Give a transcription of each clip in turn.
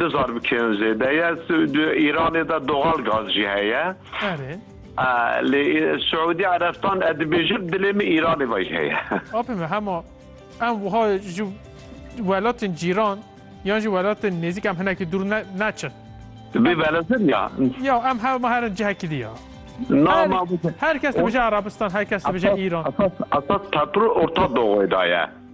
Du zarbikeyan zêde ye. Di Îranê de doxal gaz jî heye. Erê. Lê Siûdî Erebistan ez dibêjim dilê min Îranê vayî heye. Apê min hema em wiha ji welatên cîran yan jî welatên nêzîk em hinekî dûr neçin. Bê belezin ya. Ya em hema herin cihekî di ya. Nama her kes dibêje Erebistan, her kes dibêje Îran. Esas petrol orta doğuê de ye.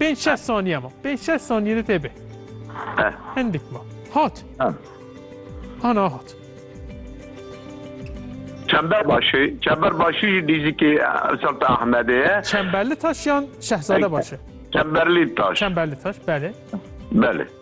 Pênc şeş saniye ma. Pênc şeş saniye de tê bê. Heh. Hindik ma. Hat. Heh. Ana hat. Çemberbaşı, Çemberbaşı jî dîzî ki Sultan Ahmedê ye. Çemberli taş yan Şehzade başı. Çemberlî taş. Çemberli taş, belê. Belê.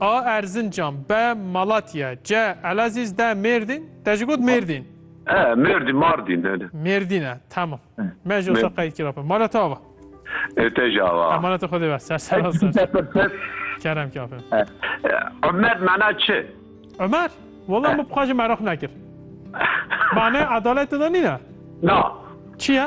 A Erzincan, B Malatya, C Elazîz, D Mêrdîn, te jî got Mêrdîn. E, Mêrdîn, Mardîn hene. Mêrdîn e, tamam. Me jî wisa qeydkir ape. Mala te ava? E, te jî ava. Emaneta xwe dê be, ser ser a ser. Kerem kî ape. Ömer mana çi? Ömer? Wala min bi xwe jî meraq nekir. Mane adalet de nîne? Na. Çi ye?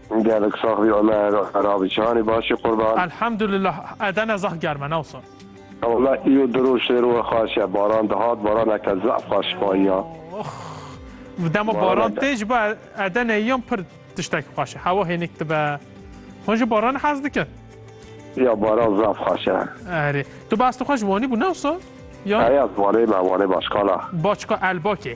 Gelek sax bî Omer Erabî Çîhanî başî qurban. Elhamdulillah edene zah germe ne wisa. Walla îro di roj tê rowe xweş e baran dihat baraneke zaf xweş bayiya. Ox vi dema baran tê ji bo edene yan pir tiştekî xweş e hewa hênik dibe hûn ji baran hez dikin. Ya baran zaf xweş e. Erê tu behs dixwe ji wanî bû ne wisa? Eya wanê me wanê başkala. Başka elbakê.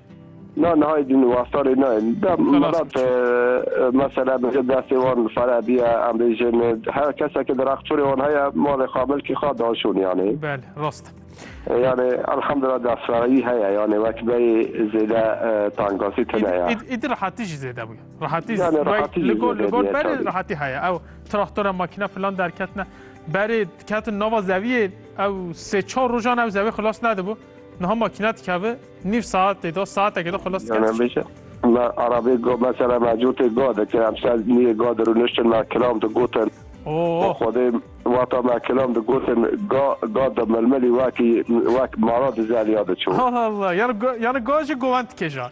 Na nihayê din wastanê nayê. Da melat mesela bêje destê wan fere biye em bêjin her keseke di rextorê wan heye malê xwe milkê xwe daşon yanê. Belê rast. Yanê elhamdullah destvereyî heye yanê wek beyê zêde tankasî tune ye. Îdî rehatî jî zêde bûye. Rehatî li gor li gor berê rehatî heye. Ew traktora makîna filan derketine berê diketin nava zeviyê ew sê çar rojan ew zevê xilas nedibû. Niha makîna dikavi nîv saetê de saetekê de xelas dikeve. Me arabê go mesela mecûtê go dike em ser niyê go de rûniştin me kilam de gotin. Xwedê wata me kilam de gotin ga ga de milmilî wekî wek mara di zeliya diçû. Allah Allah yani go yani go jî govend dike jan.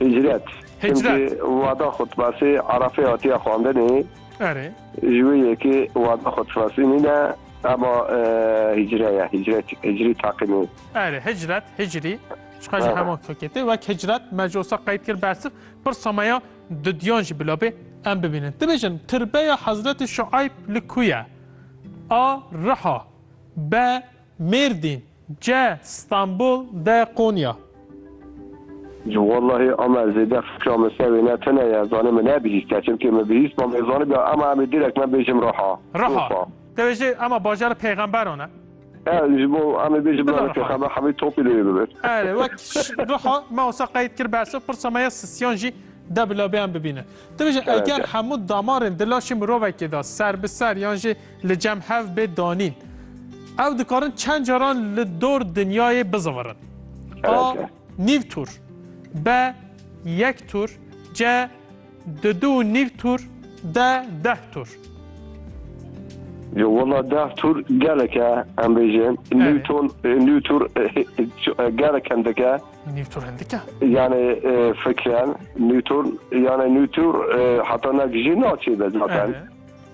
Hicret. Hicret. Wada xwe dibasê Arafê hatiye xwandinê. Erê. Ji wê yekê wada xwe difasînîne ema hicre ye. Hicret hicrî taqîmê. Erê hicret hicrî. Çiqa ji heman feketê wek hicret me ji osa qeyd kir bersiv pirsa me ya dudiyan jî bila bê em bibînin. Dibêjin tirbeya Hezretê Şueyb li ku ye? A. Riha B. Mêrdîn, ce, Stenbol, de, Konya. Ji wellahê ame zêde fikra min ser wê ne tune ye, zanê min ne bihîst e. Çimkê min bihîst mam ê zanibiya eme em ê direk me bêjim Riha. Riha. Tevê jê eme bajarê pêxemberan e. E, ji bo em ê bêjim navê pêxember hemî topî lê yê bibin. Erê, wek Riha me wisa qeyd kir behsa pirsa me ya sisiyan jî de bila bê em bibînin. Tevê jê eger hemû damarên di laşê mirovekê de ser bi ser yan jî Li cem hev bê danîn. Ew dikarin çend caran li dor dinyayê bizivirin. A nîv tur. B yek tur. C di du û nîv tur. D deh tur. Yo wala deh tur geleke em bêjin Newton Newton gelek hindike Newton hindike yani fikren Newton yani Newton hata nekjî naçê de zaten.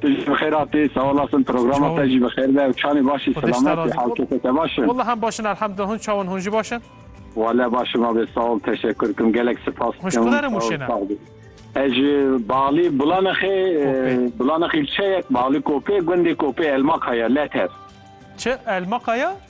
Tu jî bi xêr hatî, sewalas in, programa te jî bi xêr be û çanê baş î, selamet î, halkêtê te baş in? Walla em baş in elhemdulillah, hûn çawa in, hûn jî baş in? Wale baş im abê, sa ol, teşekur kim, gelek sipas dikim. Hûn ji kuderê Mûşê ne? Ez ji Balî Bulanexê, Bulanexê ilçeyek, Balî Kopê, gundê Kopê Elmakaya, Leter. Çi? Elmakaya?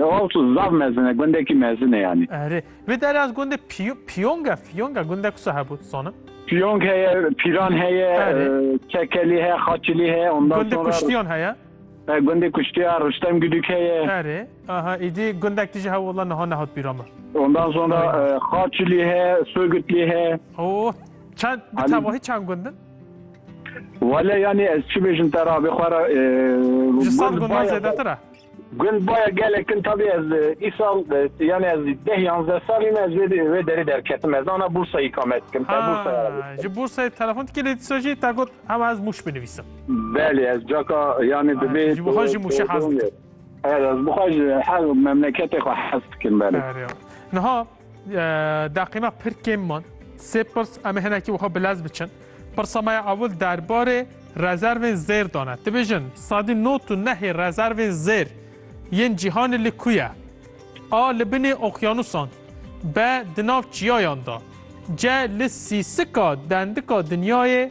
Oltu zaf mezin e, gundekî mezin e yanî. Erê, vê derê ez gundê Pyong e, Fyong e, gundek wisa hebû tu zanim? Pyong heye, Pîran heye, Kekelî heye, Xaçilî heye, ondan sonra... Gundê Kuştiyan heye? E, gundê Kuştiya, Rustem Guduk heye. Erê, aha, îdî gundek tije hebû wala niha nehat bîra min. Ondan sonra Xaçilî heye, Sogutlî heye. Oh, çend, bi tevahî çend gund in? Wale yanî ez çi bêjim te re, abê xwe re... Ji sed gundan zêdetir e? Gund baya gelek in tavî ez îsal yanê ez deh yanzdeh salî me ez wê derê derketim ez ana bûrsayî kame dikim te bûrsaya ji bûrsayê telefon dikî lê dîsa jî te got hema ez mûş binivîsim belê ez caka yanê dibê ji bo jî mûşê hez dikim ez bixwe ji her memleketê xwe hez dikim belê niha Deqîma pir kêm man. Sê pirs em ê hinekî wiha bi lez biçin. Pirsa me ya ewil derbarê rezervên zêr dane. Dibêjin sadî nod û nehê rezervên zêr yên cîhanê li ku ye? A li binê oqyanusan. B di nav çiyayan de. C li sîsika dendika dinyayê.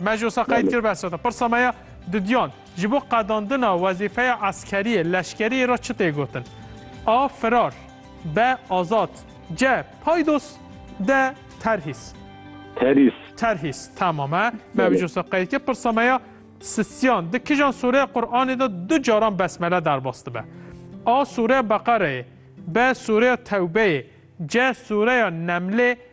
Me ji wisa qeyd kir behsa te. Pirsa me ya didiyan ji bo qedandina wezîfeya eskeriyê, leşkeriyê re çi tê gotin? A. Firar B. Azad C. Paydos D. Terhîs Terhîs. Terhîs temam e. Me ji wisa qeyd kir. Pirsa me ya sisiyan. Di kijan sûreya Quranê de du caran besmele derbas dibe? A. Sûreya Beqereyê B. Sûreya Tewbeyê C. Sûreya Nemlê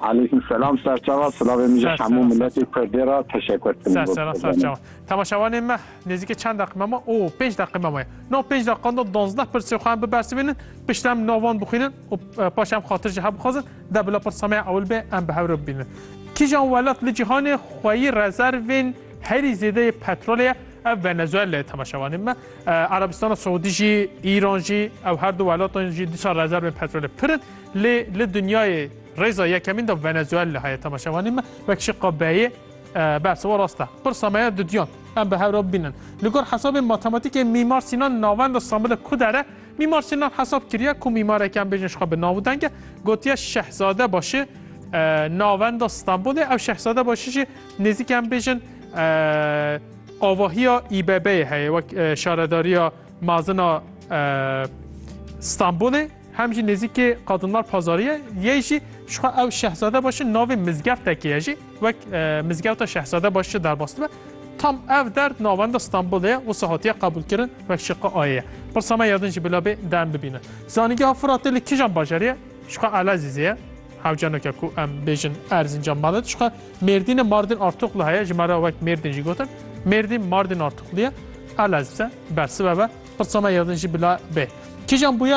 Aleykum selam serçava silavên min ji hemû miletê kurdê ra teşekur kirin. Serçava serçava. Temaşevanên me nêzîkê çend deqîme me? O pênc deqîme me. No pênc deqiqan de duwazdeh pirsê xwe em bibersivînin, pişt em nav wan bixwînin û paşê em xatir ji hev bixwazin, de bila pirsameya ewil bê em bi hev re bibînin. Kîjan welat li cîhanê xweyî rezervên herî zêdeyê petrolê ye? Ev Venezuela ye temaşevanên me. Erebistana Siûdî jî, Îran jî ew her du welatan jî dîsa rezervên petrolê pir in. Lê li dinyayê rêza yekemîn de Venezuela heye temaşevanên me wek şiqa beyê bersiva rast e. Pirsa me ye duduyan. Em bi hev re bibînin. Li gor hesabên matematîkê Mîmar Sînan navenda Stenbolê ku dere, Mîmar Sînan hesab kiriye ku mîmareke em bêjin ji xwe bi nav û deng e, gotiye Şehzadebaşi navenda Stenbolê, ew Şehzadebaşi jî nêzîkî em bêjin avahiya İBB'yê heye wek şaredariya mezin a Stenbolê. Hem jî nêzîkê Qadınlar Pazarı ye, yê jî ji xwe ew Şehzadebaşi navê mizgeftekê ye jî wek Mizgewta Şehzadebaş jî derbas dibe. Tam ev der di navenda Stenbolê ye, wisa hatiye qebûlkirin wek şiqi ayê ye. Pirsa me ya din jî bila bê de em bibînin. Zanîngeha Firatê li kijan bajarî ye? Ji xwe Elezîzê ye. Hewce neke ku em bêjin Erzincan mane ji xwe Mêrdînê Mardin Artuklu heye, ji me re wek Mêrdin jî gotin. Mêrdîn Mardin Artuklu ye. Elezîze bersive be. Pirsa me ya din jî bila bê. Kijan bûyer